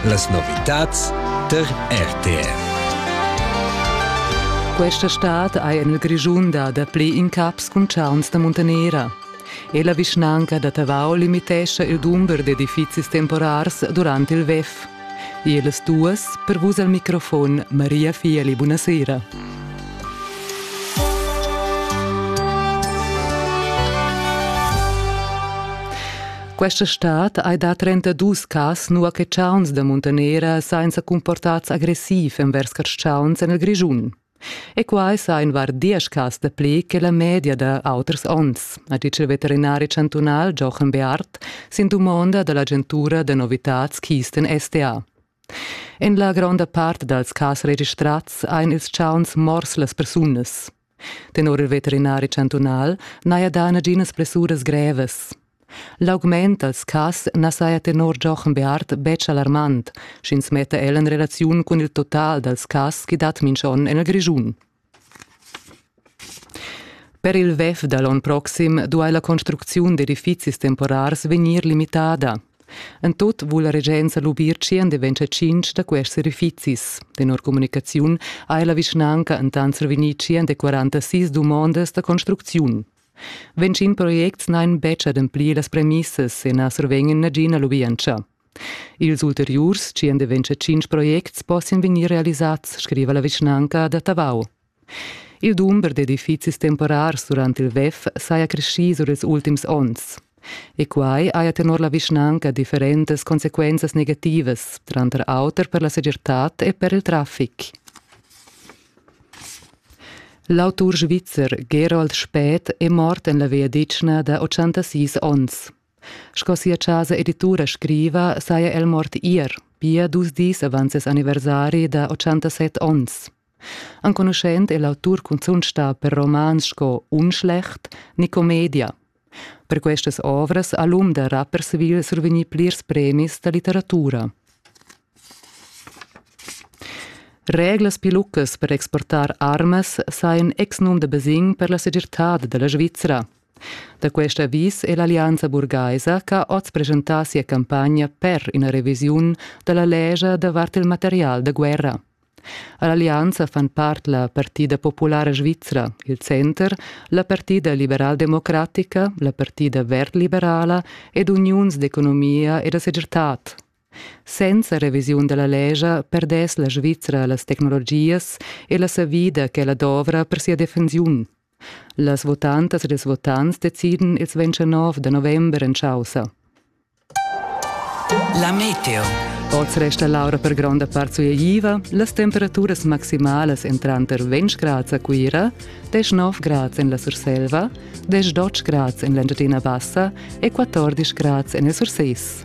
Las novitads tar RTR. Questa stad ha en il Grischun dà dapli incaps cun chauns da muntanera. E la vischnanca da Tavau limitescha il dumber d'edifizis temporars durant il WEF. Ils duas per vus al microfon Maria Fieli, buonasera. Questa stad hai dà 32 cas nua che chauns da muntanera sainza comportats agressiv envers carschauns en il Grischun. E quai sa invar diesch cas da pli che la media da auters onns, ha dit il veterinari chantunal Jochen Beart sin dumonda da l'agentura da novitads Kisten STA. En la gronda part dals cas registrats ein ils chauns mors las persunas. Tenor il veterinari chantunal n'haja dà naginas blessuras grevas. L'augment dals cas na saja tenor Giochen Beart betg alarmant, sch'ins metta el en relaziun cun il total dals cas che dat minch'on en il Grischun. Per il WEF da l'onn proxim duai la construcziun d'edifizis temporars vegnir limitada. En tut vul la regenza lubir tschien de ventscher tschintg da quests edifizis. Tenor comunicaziun ha la vischnanca entant survegnì tschien de 46 dumondas da construcziun. Ventschin projects n'han betg ademplì las premissas e na survegnan nagina lubientscha. Ils ulteriurs tschien de ventscher tschintg projects possian vegnir realisads, scriva la vischnanca da Tavau. Il dumber d'edifizis temporars durant il WEF saja creschì sur ils ultims onns. E quai haja tenor la vischnanca differentas consequenzas negativas, tranter auter per la segirtad e per il traffic. L'autur svizzer Gerold Spät è mort en la vegliadetgna da 86 onns. Sco sia casa editura scriva, saja el mort ier, pia dus dis avant ses anniversari da 87 onns. Enconuschent è l'autur cunzunt stà per romans sco Unschlecht, Nicomedia. Per questas ovras ha l'um da Rapperswil survegnì plirs premis da litteratura. Reglas piluccas per exportar armas sajan exnum da basegn per la segirtad da la Svizra. Da quest avis è l'Allianza burgaisa che ha oz presentà sia campagna per ina revisiun da la lescha davart il material da guerra. All'allianza fan part la Partida populara svizra, il Center, la Partida liberaldemocratica, la Partida verd-liberala ed uniuns d'economia e da segirtad. Senza revisiun dalla legia perdess la Svizra las tecnologias e la savida che ella dovra per sia defensiun. Las votantas ed ils votants decidan ils 29 da november en chaussa. La meteo. Oz resta l'aura per gronda part sueiva, las temperaturas maximalas en tranter 20 grads a Cuira, 19 grads en la Surselva, 18 grads en l'Engiadina Bassa e 14 grads en il Surses.